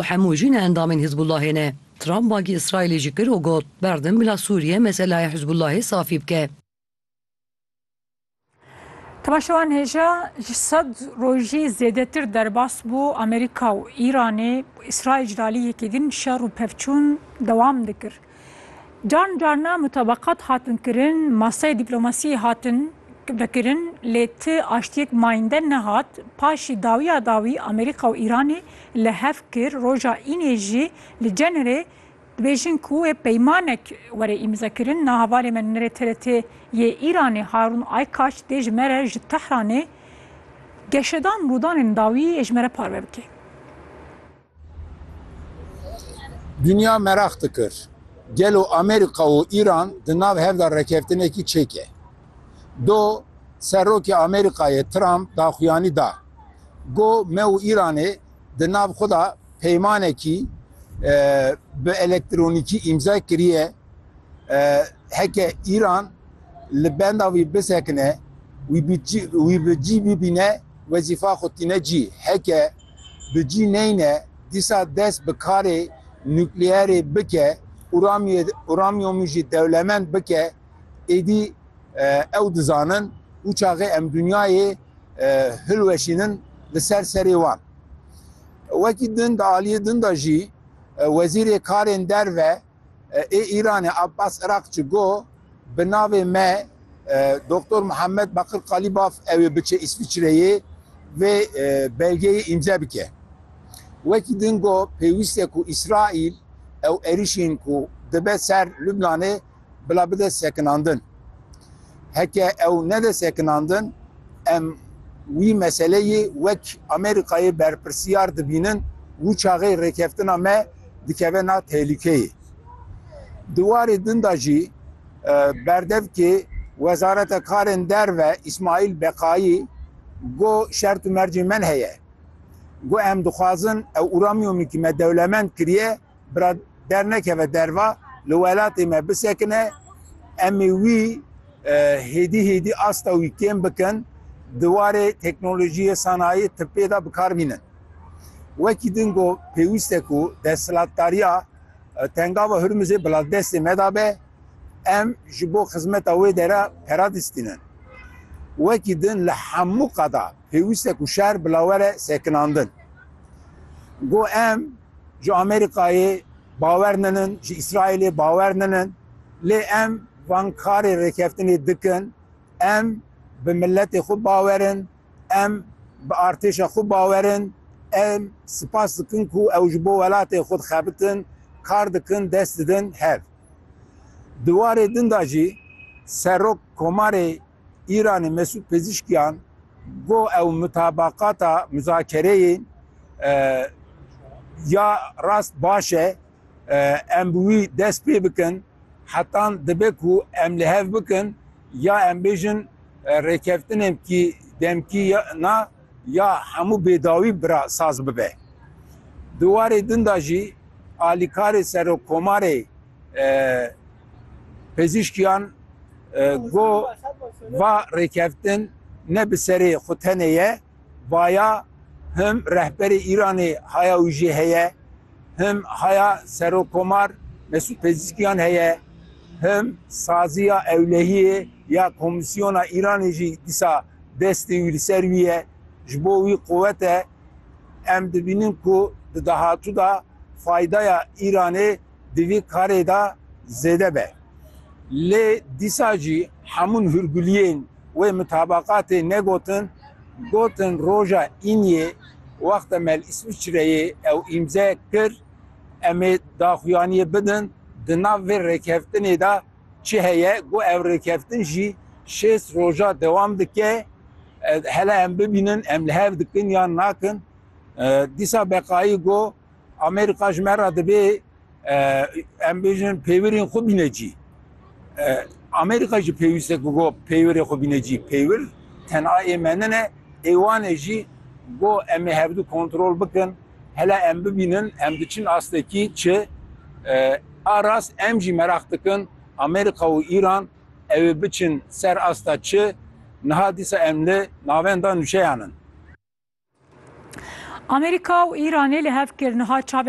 û hemû jî ne endamên Hizbûllahê ne. Trump bangî Îsraîlê jî kir û got, Berdim bila Sûriye meselaya Hizbûllahê safî bike. Temaşevan hêja ji sed rojî zêdetir derbas bû Amerîka û Îranê, Îsraîl ji alî yekê din şer û pevçûn dewam dikir. Carin carina mutabakat hatin kirin, masaya dîplomasiyê hatin vekirin lê ti aştiyek mayinde nehat. Paşî dawiya dawî Amerîka û Îranê li hev kir, roja înê jî li Cenerê dibêjin ku wê peymanek were îmzekirin. Na hevalê me nûnerê TRT yê Îranê Harûn Aykaç dê ji me re ji Tehranê geşedan rûdanên dawî yê ji me re parve bike. Dinya meraq dikir, gelo Amerîka û Îran di nav hev de rêkeftinekî çêke? Do, Serokê Amerîkayê Trump daxuyanî da, Got me û Îranê di nav xwe de peymanekî bi elektronîkî îmza kiriye, heke Îran li benda wî bisekine, wî bi cî bibîne, wezîfa xwe tîne cî. Heke. bi cî neyne dîsa dest bi karê nukleerê bike û uramyomî jî dewlemend bike, êdî ew dizanin û çaxê em dinyayê hilweşînin li ser serê wan. Wekî din di aliyê din de jî Wezîrê Karên Derve, Ê Îranê Abbas Irakçi got, Bi navê me Doktor Muhammed Bakir Kalibaf ew ê biçe Îsviçreyê vê belgeyê îmze bike. Wekî din got, pêwîst e ku Îsraîl ew êrîşên ku dibe ser Lubnanê bila bide sekinandin. Heke ew nede sekinandin em wî meseleyê wek Amerîkayê berpirsiyar dibînin wû çaxê rêkeftina me dikeve nav tehlûkeyê. Di warê din de jî berdevkê Wezareta Karên Derve Îsmaîl Beqayî got şert û mercên me heye. Got em dixwazin ew uramîyomî ku me dewlemend kiriye bira dernekeve derva li welatê me bisekine em ê wî hêdî hêdî asta wî kêm bikin di warê teknolojiyê, sanayî, tibê de bikar bînin. Wekî din got, pêwîst e ku desthilatdariya Tengava Hurmizê bila destê me de be, em ji bo xizmeta wê dere pera distînin. Wekî din li hemû qada pêwîst e ku şer bila were sekinandin. Got em ji Amerîkayê bawer ninin, ji Îsraîlê bawer ninin lê em van karê rêkeftinê dikin, em bi miletê xwe bawer in, Em bi artêşa xwe bawer in. Em spas dikin ku ew ji bo welatê xwe dixebitin, kar dikin, dest didin hev. Di warê din de jî Serok Komarê Îranê Mesûd Pezîşkiyan got ew mutabaqata, muzakereyên ya rast baş e. Em bi wî dest pê bikin hetan dibe ku em li hev bikin ya em bêjin rêkeftinên kî demkî na ya hemû bêdawî bira saz bibe. Di warê din da jî alîkarê Serokkomarê Pezîşkiyan got va rêkeftin ne bi serê xwe tenê ye, vaya him rehberê Îranê haya û jê heye, Him haya Serokkomar Mesûd Pezîşkiyan heye, him saziya ewlehiyê ya Komîsyona Îranê jî dîsa destê wî li ser wî ye. Ji bo wî quwet e. Em dibînin ku di dahatû de faydaya Îranê di vî karê de zêde be. Lê dîsa jî hemûn hûrguliyên wê mutabaqatê negotin, gotin roja îniyê wexte me li Îswîçreyê ew îmze kir, em ê daxuyaniyê bidin di nav vê rêkeftinê de çi heye, got ev rêkeftin jî şêst roja dewam dike, hele em bibînin em li hev dikin yan nakin. Dîsa Beqayî got Amerîka ji me re divê em bêjin pêwirên xwe bîne cî. Amerîka jî pêwîste ku go pêwirê xwe bîne cî. Pêwir tenha ê me nine, ê wan e jî go em ê hevdu kontrol bikin. Hela em bibînin em diçin astekî çi. A rast em jî meraq dikin Amerîka û Îran ew ê biçin ser asta çi. Niha dîsa em li navenda nûçeyan in. Amerîka û Îranê li hev kir niha çavê